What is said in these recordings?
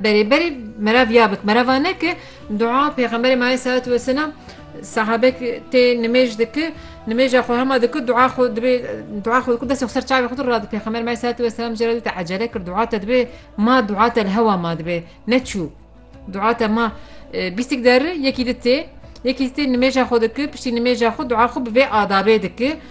Berê berê merav ya bik merav a neke dua pêxemberê ma aleyh salatu weselam sahabek tê nimêj dike nimêja xwe hema dike dua xwe dibê dua xwe dike destê xwe ser çavê xwe rad pêxember ma aleyh salatu weselam jê re dite ecele kir dua te dibê ma dua te li hewa ma dibê neçû dua te ma bîstik der yekî di tê yekî tê nimêja xwe dike piştî nimêja xwe dua xwe bi vê adabê dike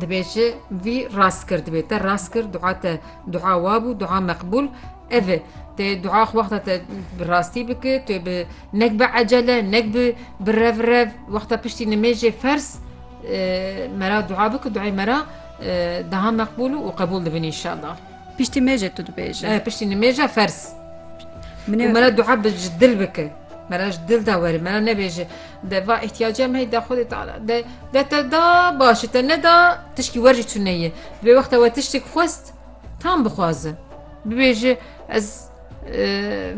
Dibêje vî rast kir dibê te rast kir dua te dua wa bû dua meqbûl ev e tê dua xwe wexta te bi rastî bike tu bi nek bi ecele nek bi bi rev rev wexta piştî nimêjê fers mera dua bike duayê mera daha meqbûl û qebûl dibin inşallah Piştî mêjê tu dibêje piştî nimêja fers Min mera dua bi ji dil bike mera ji dil da were mera nebêje De va îhtîyaca me da Xwedê Teala de de te da baş te neda tişkî wer jî tune ye. Vê wexta we tiştek xwest tam bixwaze. Bibêje ez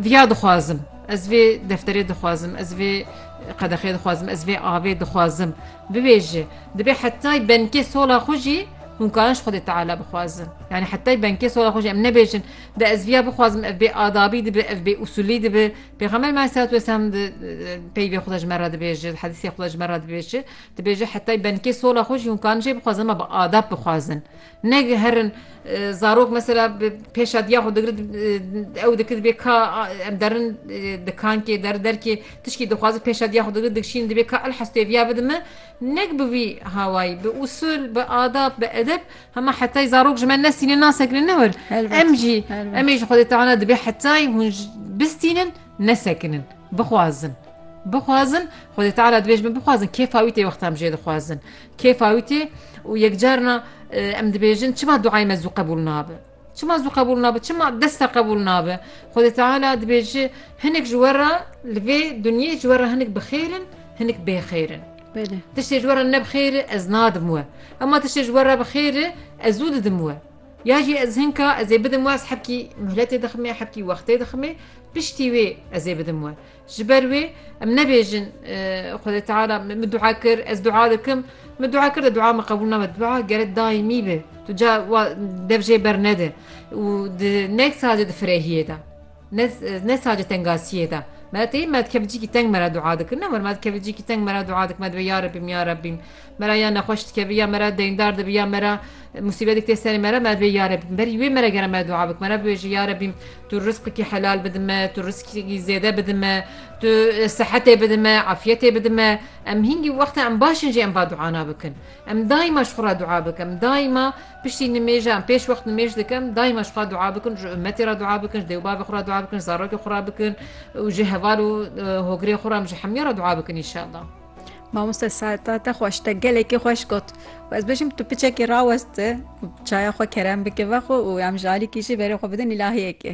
viya dixwazim. Ez vê defterê dixwazim, ez vê qedexê dixwazim, ez vê avê dixwazim. Bibêje dibê hetay benkê sola xwe jî hûn karin ji Xwedê Teala bixwazin. Yani hetay benkê sola xwe jî em nebêjin de ez viya bixwazim ev bê adabî dibe, ev bê usulî dibe. Pêxember me aleyhisselatü vesselam di peyvê xwe de ji me re dibêje, di hedîsê xwe de ji me re dibêje, dibêje hetayî benikê sola xwe jî hûn karin jê bixwazin ma bi adab bixwazin. Negiherin zarok mesela bi pêşa diya xwe digirin ew dikir dibê ka em derin dikankê der derkê tişkî dixwazin pêşa diya xwe digirin dikşînin dibê ka elhestê viya bidin me nek bi vî hawayî bi usul bi adab bi edeb Hema hetayî zarok ji me nesînin nasekinin ne wir. Em jî em ê ji Xwedê Teala dibê hetayî hûn bistînin nesekinin. Bixwazin. Bixwazin Xwedê Teala dibê ji me bixwazin kêfa wî tê wexta em jê dixwazin. Kêfa wî tê û yekcarina em dibêjin çima duayê me zû qebûl nabe. Çima zû qebûl nabe? Çima desta qebûl nabe? Xwedê Teala dibêje hinek ji we re li vê dinyê ji we re hinek bi xêr in, hinek bê xêr in. Tiştê ji we re ne bi xêr e ez nadim we. Hema tiştê ji we re bi xêr e ez zû didim we. Ya jî ez hinka ez ê bidim we ez hebkî mihletê diximê, hebkî wextê diximê, piştî wê ez ê bidim we. Ji ber wê em nebêjin Xwedê Teala min dua kir, ez dua dikim, min dua kir de dua min qebûl nabe. Dua gerek daîmî be. Tu ca dev jê bernede û ne sadece di firehiyê de ne sadece tengasiyê de me tê me dikevicîkî teng me re dua dikin ne me dikevicîkî teng me re dua dikim me divê ya Rebîm ya Rebîm Me re ya nexweş dikeve ya me re deyndar dibe ya me re musîbetek tê serê me re me divê ya Rebî berî wê me re gere me dua bikim me re bibêje ya Rebî tu rizqekî helal bide me tu rizqekî zêde bide me tu sehetê bide me efyetê bide me em hîngî wexta em baş in jî em va duana bikin em daîma ji xwe re dua bikin em daîma piştî nimêja em pêş wext nimêj dikin daîma ji xwe re dua bikin ji ummetê re dua bikin ji dêw bavê xwe re dua bikin zarokê xwe re bikin û ji heval û hogirê xwe re em ji hemûyan re dua bikin înşallah. Mamoste Saeta te xweş te gelekî xweş got û ez bêjim tu piçekî rawest çaya xwe kerem bike ve xwe û em ji alîkî jî berê xwe bidin îlahiyekê.